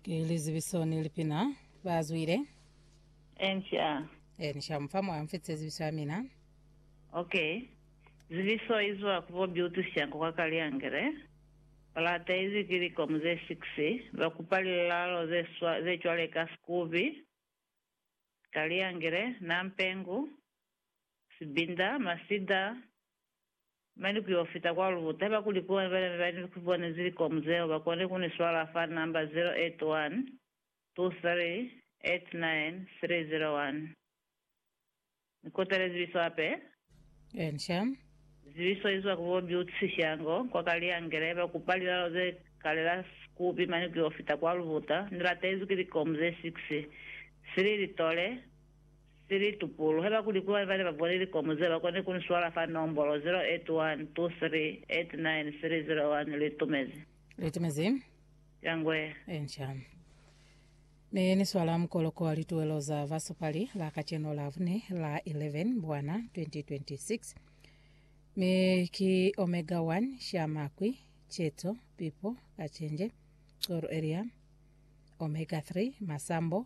Ki lizibiso ni lipina ba zwile. Enca. E, ni shamufa mwa mfitise zibiso ya mina. Ok. Zibiso i zwa ku bo Beauty Shango kwa Kaliangele. Ba lataizwi ki likomu ze six. Ba kupa lilalo ze swa, ze cwale ka Sikubi, Kaliangele, Nampengu, Sibinda, Masida, Mane ku yo fita kwa lubuta. Haiba kuli ku wena bana beba ni ku bona zilikomu zeo, ba kone ku ni swala fa namba 0812389301. Ni kotele zibiso hape. Inca. Zibiso izwa ku bo Butsi Shango, kwa Kaliangele. Haiba kupa lilalo ze kalela Sikubi mane ku yo fita kwa lubuta. Ni latezwi ki likomu ze 6. Sili Litole. Ni litupulu. Haiba kuli ku bana bane ba bole likomu zeo, ba koni ku ni swala fa nombolo 0812389301. Li tumezi. Li tumezi. Ya ngwe. Ye nca. Ne ni swala mukoloko wa lituwelo za basupali la kacenu la bune, la 11 Mbwana 2026. Mi ki Omega One, Sha Makwi, Cheto, Pipo, Kachenje, Coro Area, Omega Three, Masambo,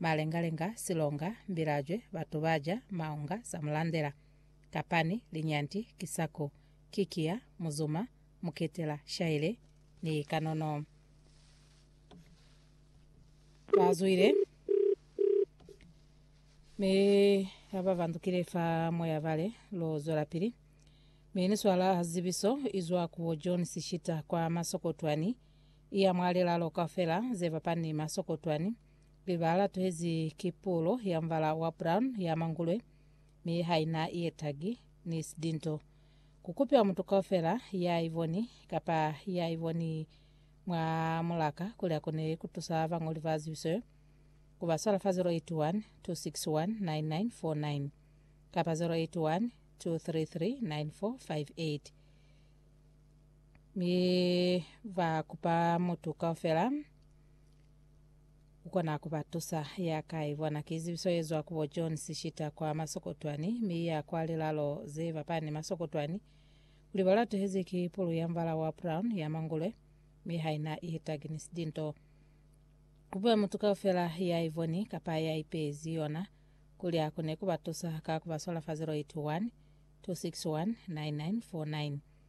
malengalenga, silonga, mbilajwe, batu baja, maunga, samulandela, kapani, linyanti, kisako, kikiya, muzuma, muketela, shaile, ni kanono. Bazwile mi abavandukile fa moya bale lo zwelapili mi ni swala zibiso izwa ku John Sishita kwa Masokotwani Iya mwa lilalo kaufela ze fapani ni masokotwani, biba la tuhezi ki pulo ya mubala wa brown ya mangulwe, mi ha ina ye tagi, ni sidinto. Ku kupiwa mutu kaufela ya i boni, kapa ya i boni mwa mulaka kuli a kone ku tusa bañoli ba zibiso yo, ku ba swala fa 081 261 9949 kapa 081 233 9458. Mi ba kupa mutu kaufela ukona ku ba tusa. Ya ka i bona ki zibiso ye zwa ku bo John Sishita kwa Masokotwani, mi ya kwa lilalo ze bapani Masokotwani, kuli ba latuhezi ki pulu ya mbala wa brown ya mangulwe, mi ha ina i taginisi dinto. Kupe mutu kaufela ya i boni kapa ya ipezi yona. Kulya ku ne ku ba tusa ka ku ba swala fa 081 261 9949.